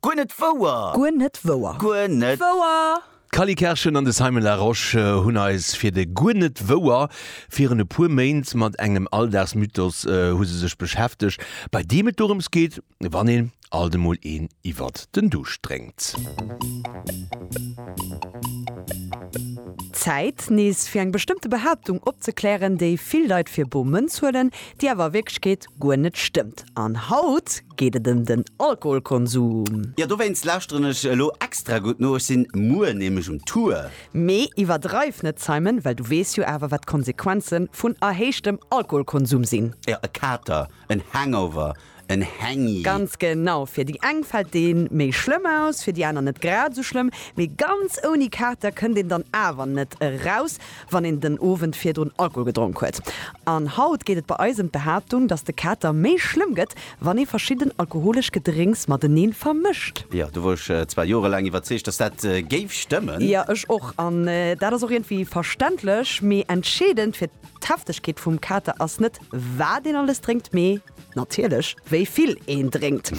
Guer net wouer! Guer net wouer! Guer net wouer! D'Cally Kerschen an de Simon Larosche hunn eis fir de Guer net wouer! virun e puer Méint mat engem Alldagsmythos hu se sech beschäftegt, bei deem et dorëms geet, wann een alt emol een iwwert den Duuscht drénkt. Zäit, nees fir eng bestëmmte Behaaptung opzeklären, déi vill Leit fir bor Mënz huelen, déi awer a Wierklechkeet guer net stëmmt an haut geet et em den Alkoholkonsum. Jo, dowéinst lauschteren ech elo extra gutt no, ech sinn muer nämlech um Tour. Mee iwwerdreiw net Simon, well du weess jo awer wat d'Konsequenzen vun erhéichtem Alkoholkonsum sinn. Jo, e Kater, en Hangover, en Hangy. Ganz genau, fir déi eng fällt deen méi schlëmm aus, fir déi aner net grad esou schlëmm, mee ganz ouni Kater kënnt een dann awer net eraus wann een den Owend virdrun Alkohol gedronk huet. An haut geet et bei eis ëm d'Behaaptung, dass de Kater méi schlëmm gëtt, wann ee verschidden alkoholesch Gedrénks mateneen vermëscht. Jo, do wor ech zwar jorelaang iwwerzeegt, dass dat géif stëmmen. Jo, ech och. An dat ass och iergendwéi verständlech. Mee entscheedend fir d'Heftegkeet vum Kater ass net, wat een alles drénkt, mee Natierlech, wéi vill een drénkt.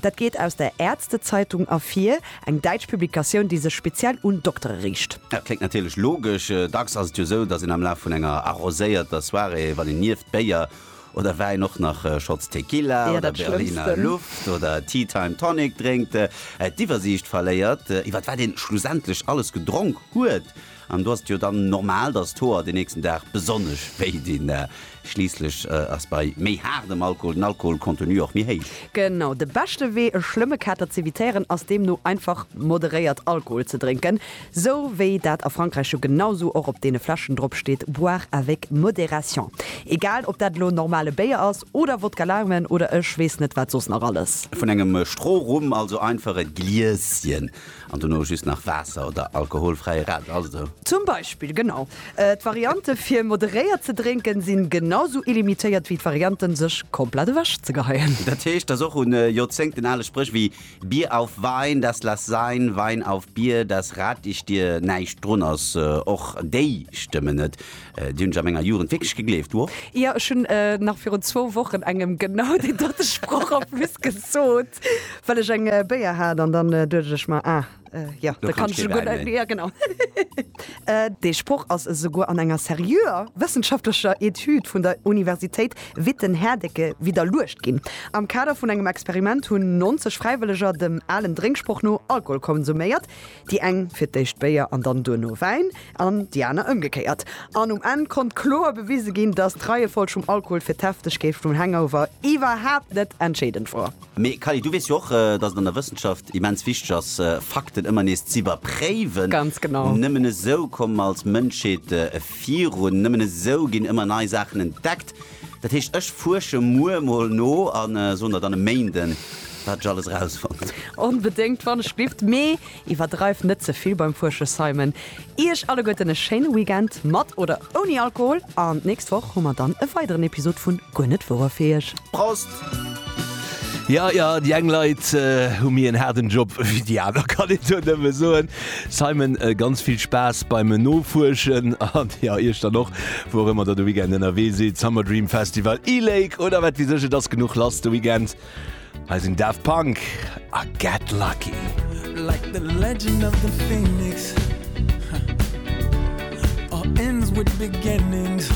Dat geet aus der Ärztezeitung ervir, eng däitsch Publikatioun, déi sech speziell un Doktere riicht. Dat kléngt natierlech logesch. Dacks ass et jo esou, datt een am Laf vun enger arroséierter Soirée, wann een nieft Béier oder Wäin och nach Shots Tequila oder Berliner Luft oder Tea Time Tonic drénkt, d'Iwwersiicht verléiert, iwwer wat ee schlussendlech alles gedronk huet. An do ass et jo dann normal, dass d'Hoer den nächsten Dag besonnesch wéi dinn. Schliisslech ass bei méi haardem Alkohol den Alkoholcontenu och méi héich. Genau. De beschte Wee e schlëmme Kater z'evitéieren ass deemno einfach moderéiert Alkohol ze drénken, sou wéi dat a Frankräich jo genau sou och op deene Fläschen drop steet, boire avec modération. Egal ob dat elo normale Béier ass oder Wodka Laumen oder ech weess net wat soss nach alles. Vun engem Strohrum also einfach e Gliesschen An dono just nach Waasser oder alkoholfräie Radler, ass et esou? Zum Beispill, genau. D'Variante fir moderéiert ze drénken sinn genau sou illimitéiert wéi d'Varianten sech komplett ewech ze geheien. Dat heescht, dass och un Joerzéngten ale Spréch wéi Bier auf Wein, das lass sein, Wein auf Bier, das rate ich dir näischt drun ass. Och déi stëmmen net. Déi hunn ech a menger Jugend wierklech gegleeft, wo? Jo, ech hunn nach virun zwou Wochen engem genau deen dote Sproch en plus gesot, well ech eng Béier hat an dann duecht ech mer, ah jo, da kann ech jo guer net méi. Jo, genau. Dee Sproch ass esouguer an enger seriöer wëssenschaftlecher Etüd vun der Universitéit Witten-Herdecke widderluecht ginn. Am Kader vun engem Experiment hunn 90 Fräiwëlleger dem alen Drénksproch no Alkohol konsuméiert. Déi eng fir d'éischt Béier an dann duerno Wäin an déi aner ëmgekéiert. An um Enn konnt kloer bewise ginn, dass d'Reiefolg vum Alkohol fir d'Heftegkeet vum Hangover iwwerhaapt net entscheedend wor. Mee Kally, du weess jo och, dass et an der Wëssenschaft immens wichteg ass, Fakten ëmmer nees z'iwwerpréiwen. Ganz genau. Nëmmen esou komme mer als Mënschheet virun. Nëmmen esou ginn ëmmer nei Saachen entdeckt. Dat heescht, ech fuersche muer mol no a soen der dann e Méinden, wat ech alles erausfonnt. Onbedéngt, wann ech dierft. Mee iwwerdreift net ze vill beim Fuersche, Simon. Iech alleguerten e schéine Weekend, mat oder ouni Alkohol, an d'nächst Woch hu mer dann e weideren Episod vun Guer net wouer fir Iech. Prost! Ja, ja, déi eng Leit äh, hu mir en haarden Job wéi déi aner, kann een do nëmme soen. Simon, äh, ganz vill Spaass beim Nofuerschen an ja, Iech dann och, wou och ëmmer der de Weekend ënnerwee sidd. Summer Dream Festival, E-Lake oder wat wie sech, et ass genuch lass de Weekend. Hei sinn Daft Punk a Get Lucky. like the legend of the phoenix. Huh. All ends with beginnings.